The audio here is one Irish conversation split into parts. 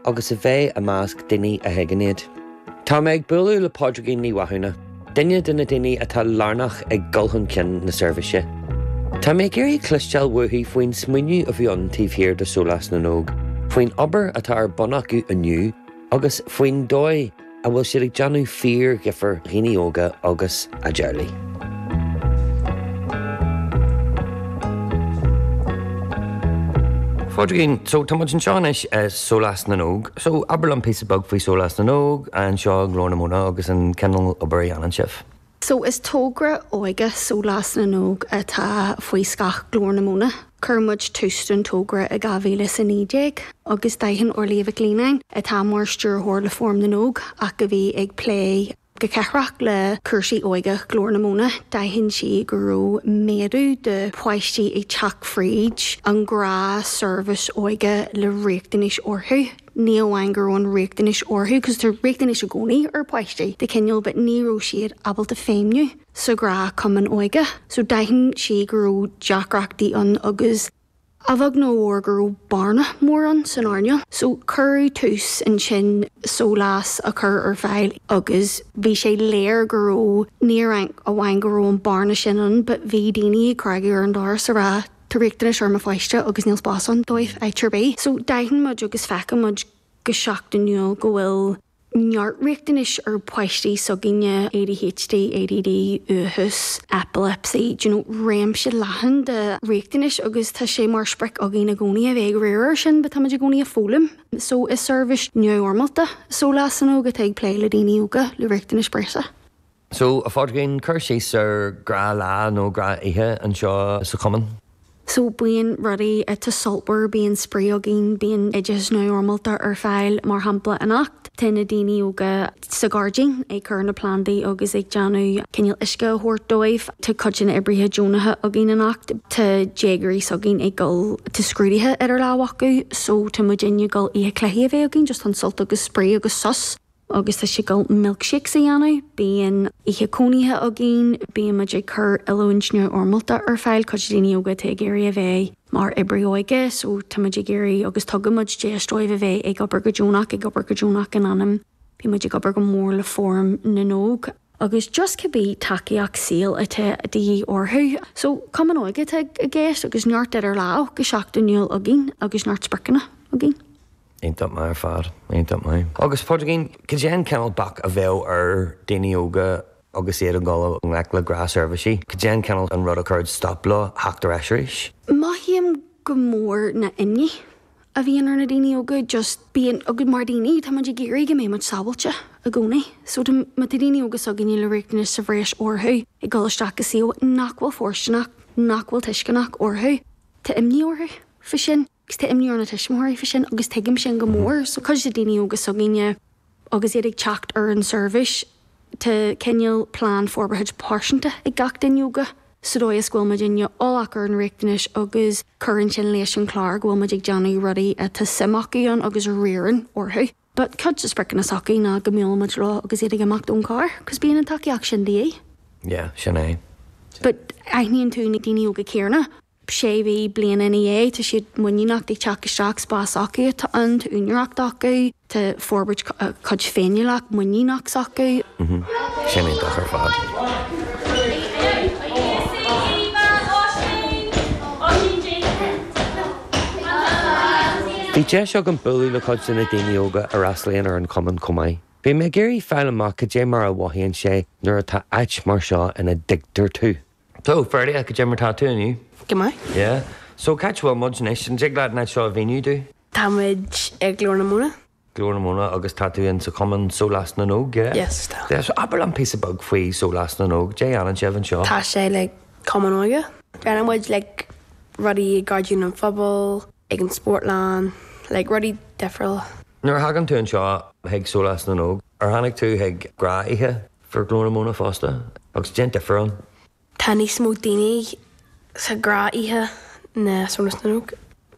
agus a bheith i measc daoine a thuigeann iad. Tá mé ag bualadh le Pádraigín Ní Mhathúna, duine de na daoine atá lárnach i gcur chun cinn na seirbhíse. Tá mé ag iarraidh cloisteáil uaithi faoin smaoineamh a bhí ann taobh thiar de Shólás na nÓg, faoin obair atá ar bun acu inniu agus faoin dóigh, a bhfuil siad ag déanamh fíor-dhifir do dhaoine óga agus a dteaghlaigh. A Phádraigín, so, tá muid anseo anois i Sólás na nÓg, so abair liom píosa beag faoi Sólás na nÓg, anseo i nGlór na Móna agus an cineál obair a dhéanann sibh. So is tógra óige Sólás na nÓg atá faoi scáth Glór na Móna. Chuir muid tús don tógra i 2019 agus d'aithin Orliath Mhic Lionnáin, atá mar stiúrthóir le Fóram na nÓg ach a bhí ag plé go ceathrach le cúrsaí óige Glór na Móna, d'aithin sí go raibh méadú de pháistí ag teacht fríd an ghnáthsheirbhís óige le riachtanais orthu. ní amháin go raibh riachtanais orthu, cos tá riachtanais i gcónaí ar páistí de chineál but ní raibh siad ábalta feidhmniú sa ghnáthchumann óige so d'aithin sí go raibh deacrachtaí ann agus a bheag nó a mhór go raibh bearna mór ann san earnáil so cuireadh tús ansin sólás a chur ar fáil agus bhí sé léir go raibh, ní amháin go raibh an bearna sin ann but bhí daoine ag cnagadh ar an doras ag rá. Tá riachtanais ar mo pháiste agus níl spás ann dóibh áit ar bith. So d'aithin muid agus feiceann muid go seachtainiúil go bhfuil neart riachtanais ar pháistí s'againne, ADHD, ADD, uathachas, epilepsy, do you know, réimse leathan de riachtanais agus tá sé mar sprioc againn i gcónaí a bheith ag riar air sin but táimid i gcónaí ag foghlaim. So is seirbhís neamhfhoirmeálta, Sólás na nÓg atá ag plé le daoine óga le riachtanais breise. So, a Phádraigín, cuir síos ar ghnáthlá nó gnáthoíche anseo sa Chumann? So, bíonn rudaí iontach sultmhar, bíonn spraoi againn, bíonn oideachas neamhfhoirmeálta ar fáil, mar shampla anocht tá na daoine óga sa ghairdín ag cur na plandaí agus ag déanamh cineál uisce a thabhairt dóibh, tá cuid de na oibrithe deonacha againn anocht, tá déagóirí s'againn ag dul, tá scrúdaithe idir lámh acu, so tá muidinne ag dul oíche cluichí a bheith againn, just chun sult agus spraoi agus sos. Agus tá siad ag dul milkshakes a dhéanamh, bíonn oíche cónaithe againn, bíonn muid ag cur oiliúint neamhfhoirmeálta ar fáil, cuidiú le daoine óga atá ag iarraidh a bheith mar oibrí óige, so tá muid ag iarraidh agus tugann muid deis dóibh a bheith ag obair go deonach, ag obair go deonach in ainm, bíonn muid ag obair go mór le Fóram na nÓg. Agus just cibé tacaíocht saoil atá de dhíth orthu. So, cumann óige atá i gceist agus neart idir lámh go seachtainiúil againn agus neart spriocanna againn. Iontach maith ar fad. Iontach maith. Agus Pádraigín, cad é an cineál bac a bheadh ar daoine óga agus iad ag dul i ngleic le gnáthsheirbhísí? Cad é an cineál an rud a chuirfeadh stop leo theacht ar ais arís? Mothaím go mór ná imní a bhíonn ar na daoine óga, just bíonn, againn mar dhaoine, tá muid ag iarraidh go mbeidh muid sábháilte i gcónaí. So tá, má tá daoine óga s'againne le riachtanais sa bhreis orthu ag dul isteach go suíomh nach bhfuil fóirsteanach, nach bhfuil tuisceanach orthu, tá imní orthu faoi sin. Is tá imní ar na tuismitheoirí faoi sin agus tuigim sin go mór. So cuid de daoine óga s'againne agus iad ag teacht ar an seirbhís, tá cineál plean forbartha pearsanta ag gach duine óga sa dóigh is go bhfuil muidinne eolach ar an riachtanais agus cuireann sin leis an chlár go bhfuil muid ag déanamh rudaí atá suim acu ann agus a riarann orthu. But cuid de spriocanna s'acu ná go mbuaileann muid leo agus iad ag imeacht ón charr cause bíonn an tacaíocht sin de dhíth. Yeah, sin é. But aithníonn tú na daoine óga céanna? sé mhí, bliain ina dhiaidh, tá siad muiníneach ag teacht isteach, spás s'acu atá ann, tá úinéireacht acu, tá forbairt a cuid féiniúlacht, muiníneach s'acu. Sin iontach ar fad. Bhí deis agam bualadh le cuid de na daoine óga a fhreastlaíonn ar an chumann chomh maith. Bhí mé ag iarraidh fáil amach cad é mar a mhothaíonn sé nuair atá áit mar seo ina dtuigtear tú. So, fairly ach cad é mar atá tú inniu. Go maith. Yeah. So, c'áit a bhfuil muid anois? An dtig leat an áit seo a mhíniú domh? Tá muid ag Glór na Móna. Glór na Móna agus tá tú in sa chumann Sólás na nÓg, yeah? Yes, tá. Yeah, so abair liom píosa beag faoi Sólás na nÓg. Cad é a dhéanann sibh anseo? Tá sé like cumann óige. Déanann muid like rudaí i Gairdín an Phobail, ag an Spórtlann, like rudaí difriúla. Nuair a thagann tú anseo chuig Sólás na nÓg, ar tháinig tú chuig gnáthoíche? Fríd Ghlór na Móna fosta, agus cad é an difear ann. Tá níos mó daoine sa ghnáthoíche ná Sólás na nÓg.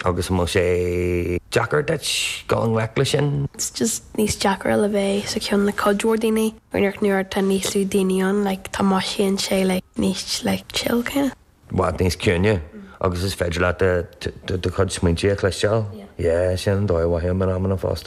Agus an bhfuil sé deacair duit dul i ngleic leis sin? It's just níos deacra le bheith sa cheann le cuid mhór daoine, you know ach nuair atá níos lú daoine ann, like, tá mothaíonn sé like níos like chill kinda. I bhfad níos ciúine agus is féidir leat do chuid smaointe a chloisteáil. Yeah, yeah sin an dóigh a mhothaím in amanna fosta.